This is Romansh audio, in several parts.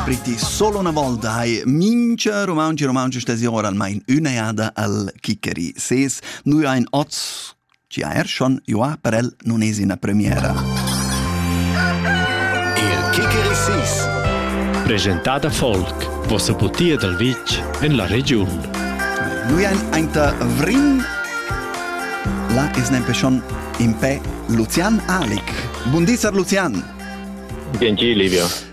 Priti solo una volta hai mincha romanci romanci stesi ora almain üna jada al Kikeri ses. Nui ein oz ci ha er schon joa per el non es ina premiera. Il Kikeri Sis Presentada Folk, vossa butia dal vitg en la regiun. Nui ein ainta Vrin, la es nempe schon in pe Lucian Alik. Bundisar Lucian! Bien Livia.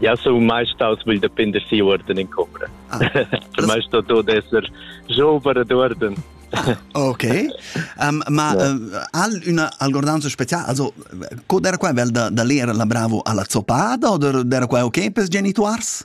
Jau sun mai staus vegl da pender si uorden in combra. Ah. per mai sto tot esser jober ad uorden. Ok, um, ma yeah. uh, al una algordanza speciale, also, era qua vel da, da lera la bravo alla zoppata o era qua ok per genituars?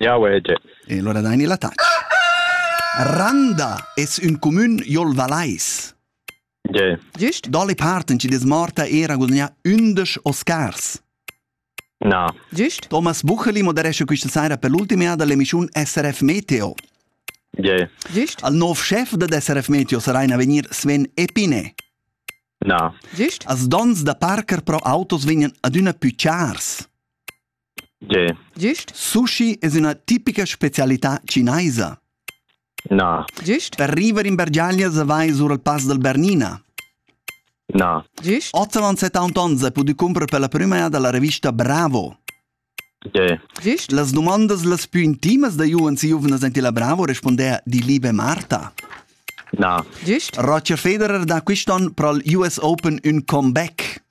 Jau vege. E lura daini la tac. Randa es ün cumün jol Valais. Ge. Giust? Dalle parten ci des morta era gudagnà ündesch Oscars. Na. Giust? Thomas Bucheli moderesce questa sera per l'ultima dell'emissione SRF Meteo. Ge. Giust? Al nuovo chef dell'SRF Meteo sarà in avvenir Sven Epine. Na. Giust? As dons da parker pro autos vegnan adüna più chars. Giust? Sushi es üna tipica specialità chinaisa. Na. Giust? Per river in bergiaglias avais our al Pass dal Bernina. Na. Giust? Ottavan 71 e pudü cumprer per la prüma eir da la revista Bravo. Giust? Las dumandas las pü intimas da Juans e giuvnas ant illa Bravo respondeha die liebe Marta. Na. Giust? Roger Federer dà quist'on pro'l US Open ün comeback.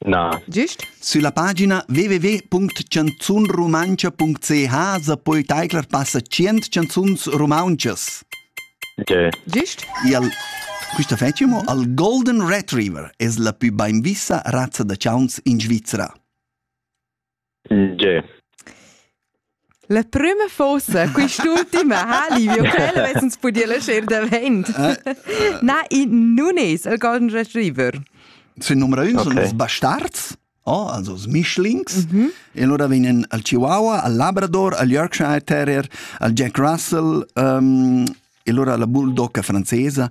Na. Gist? Sulla pagina www.canzunrumantscha.ch sa poi taiclar passa tschient canzuns rumauntschas. Okay. Gist? Il Questa fetg mo al Golden Retriever es la pü bainvissa razza da chauns in Svizra. Tge? La prüma fossa quist'ultima ha Livio quel avessens pudì laschar davent. Na, i nun es el golden retriever. Sün numero 1 sun els bastards, oh, also els Mischlings, e lura vegnan al Chihuahua, al Labrador, al Yorkshire Terrier, al Jack Russell, um, e lura la Bulldogga francesa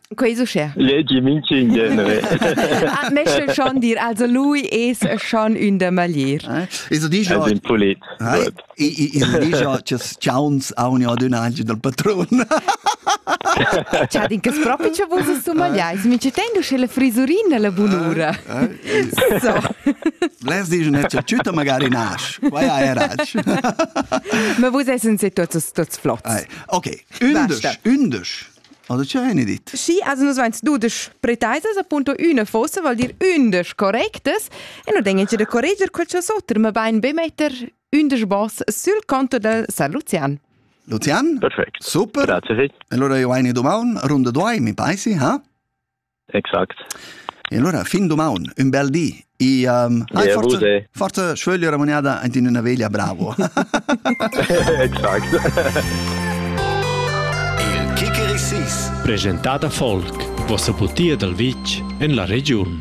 Quei is uschè. Legi minchün genere. Ah, Meschel schon dir, also lui es schon ün da maglier. Es digia Es ün pulit. Es digia chas chauns auni adüna anche dal patrun. Cha din che propi cha vus es magliais, mi ci tengo sche la frisurina la bunura. So. Les digen net cha tschüta magari nasch. Quai era. Ma vus essen se tots tots flots. Ok, ündesch, ündesch. Oder c'è eine dit? Sì, also nus vains dudesch pretaisas, appunto üna fossa vuol dir ündesch correctas e nu degna da correger quel cha's oter, ma bain be metter ündesch boss sul conto del San Lucian. Lucian? Perfekt. Super. Grazie. E allora io hai una domanda, runda due, mi paesi, ha? Exact. E allora, fin domaun, un bel di. E um, hai yeah, forse, forse schögli remuneada in una veglia bravo. exact. Il Kikerisis. Presentata Folk, vossa butia dal vitg en la regiun.